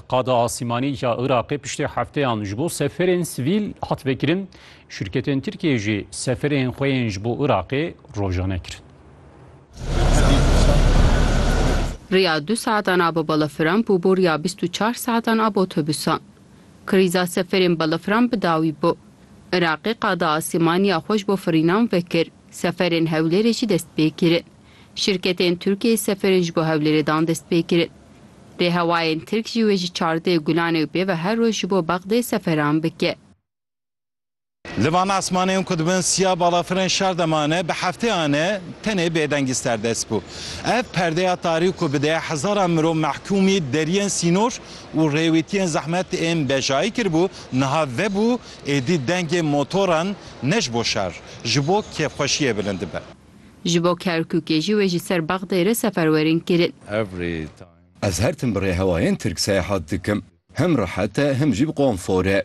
Qada Asîmanî ya Iraqê piştî hefteyan ji bo seferên sivîl hat vekirin, şirketên Tirkiyeyê jî seferên xwe yên ji bo Iraqê rojane kirin. Riya du saetan a bi balafiran bû bo riya bîst û çar saetan a bi otobûsan. Krîza seferên balafiran bi dawî bû. Iraqê qada asîmanî ya xwe ji bo firînan vekir, seferên Hewlêrê jî dest pê kirin. Şirketên Tirkiyê seferên ji bo Hewlêrê dan destpêkirin. Rêhewayên Tirk jî wê ji çardê Gulanê û pêve her roj ji bo Bexdê seferan bike. Li van asmanên ku dibin siya balafirên şar de mane bi hefteyan e tenê bêdengî serdest bû. Ev perdeya tarî ku bi deya hezaran mirov mehkûmî deriyên sînor û rêwîtiyên zehmet ên bejayî kiribû niha vebû êdî dengê motoran ne ji bo şer ji bo kêfxweşiyê bilind dibe. Ji bo Kerkûkê jî wê ji ser Bexdayê re seferwerên kirin. Ez her tim bi rêhewayên tirk seyahat dikim. Hem rehet e hem jî bi konfor e.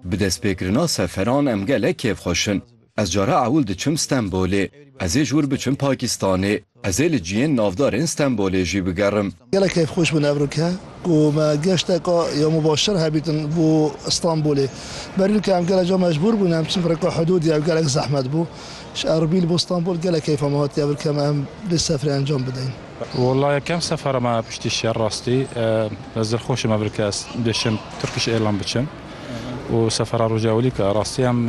Bi destpêkirina seferan em gelek kêfxweş in. Ez care ewil diçim Stenbolê. Ez ê ji wir biçim Pakistanê. Ez ê li ciyên navdar ên Stenbolê jî bigerim. Gelek keyfxweş bû Nevrûke ku me geşteke ya mubaşir hebîtin bo Stenbolê. Berîlke em gelek car mecbûr bûn em çin rêka hidûdê ew gelek zehmet bû. Ji Erbîl bo Stenbol gelek keyfa me hatiye vir ke me em vê seferê encam bideyin. Walla yekem sefera me ye piştî şer rastî. Ez dilxweş im vir ke ez bêşim Turkish Airline biçim û sefera rojewilî ke rastî em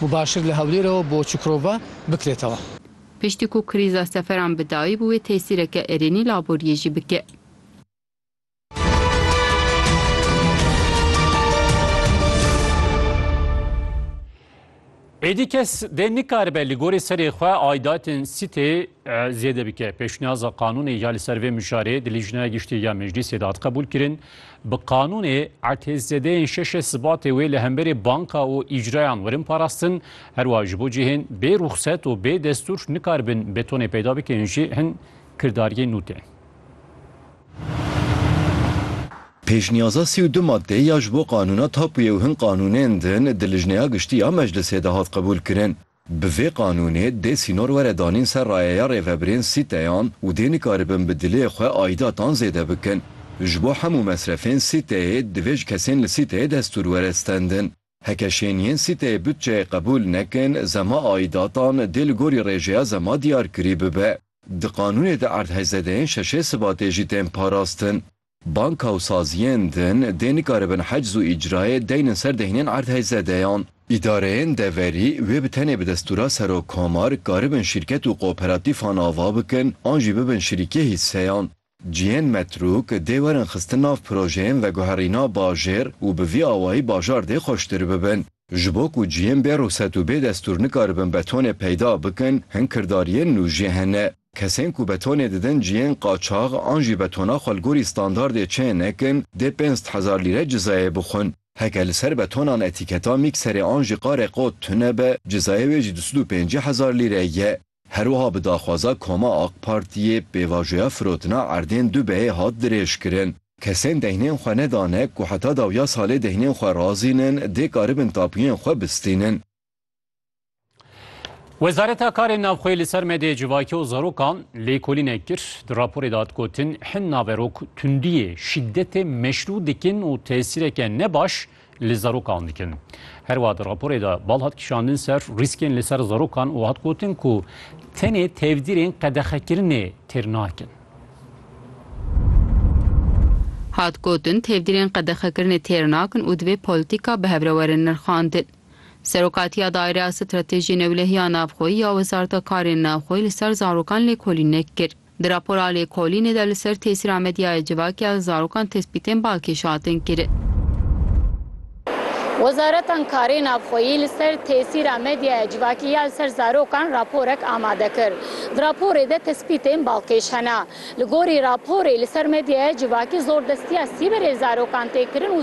Mubaşir li Hewlêrewa bo Çukurova bikirêtewa. Piştî ku krîza seferan bi dayî bi wê tesîreke erênî laboriyê jî bike. Êdî kes dê nikaribe li gorî serê xwe aidatên sîtê zêde bike. Pêşniyaza qanûnê ya li ser vê mijarê di Lîjnaya Giştî ya Meclîsê de hat qebûlkirin. Bi qanûnê etê zêdeyên şeşê Sibatê wê li hemberê banka û îcrayan werin parastin, herwiha ji bo cihên bê ruxset û bê destûr nikaribin betonê peyda bikin jî hin kirdariyên nû tên. Pêşniyaza sî û du madeyê ya ji bo qanûna tapuye û hin qanûnên din di Lijneya Giştî ya Meclisê de hat qebûlkirin. Bi vê qanûnê dê sînor were danîn ser rayeya rêvebirên sîteyan û dê nikaribin bi dilê xwe aîdatan zêde bikin. Ji bo hemû mesrefên sîteyê divê ji kesên li sîteyê destûr were stendin. Heke şêniyên sîteyê butçeyê qebûl nekin, zema aîdatan dê li gorî rêjeya zema diyarkirî bibe. Di qanûnê de erdhejzedeyên şeşê Sibatê jî tên parastin. Banka û saziyên din dê nikaribin hecz û îcrayê deynin ser deynên erdhêzzedeyan. Îdareyên deverî wê bi tenê bi destûra Serokkomar karibin şîrket û kooperatîfan ava bikin an jî bibin şirîkê hîsseyan. Cihên metrûk dê werin xistin nav projeyên veguherîna bajêr û bi vî awayî bajar dê xweştir bibin. Ji bo ku cihên bê rûset û bê destûr nikaribin betonê peyda bikin, hin kirdariyên nû jî hene. Kesên ku betonê didin cihên qaçax an jî betona xwe li gorî standardê çê nekin, dê pênc hezar lîre cizayê bixwin. Heke li ser betonan etîketa mîkserê an jî qarê qot tune be, cizayê wê jî du sed û pêncî hezar lîre ye. Herwiha bi daxwaza Koma AK Partiyê pêvajoya firotina erdên du beyê hat dirêjkirin. Kesên deynên xwe nedane ku heta dawiya salê deynên xwe razînin dê karibin tapuyên xwe bistînin. Wezareta Karên Navxweyê li ser medyaya civakî û zarokan lêkolînek kir. Di raporê de hat gotin, hin naverok tundiyê, şîdetê meşrû dikin û tesîreke ne baş li zarokan dikin. Her wiha di raporê de bal hat kişandin ser rîskên li ser zarokan û hat gotin ku tenê tevdîrên qedexekirinê têr nakin. Hat gotin tevdîrên qedexekirinê têr nakin û divê polîtîka bi hev re were nirxandin. Serokatiya Daîreya Stratejiyê Newlehiya Navxweyî ya Wezareta Karên Navxweyî li ser zarokan lêkolînek kir. Di rapora lêkolînê de li ser tesîra medyaya civakî ya zarokan tespîtên balkêş hatin kirin. Wezareta Karê Navxweyî li ser tesîra medyaya civakî ya li ser zarokan raporek amade kir. Di raporê de tespîtên balkêş hene. Li gorî raporê li ser medyaya civakî zordestiya sîberê li zarokan tê kirin û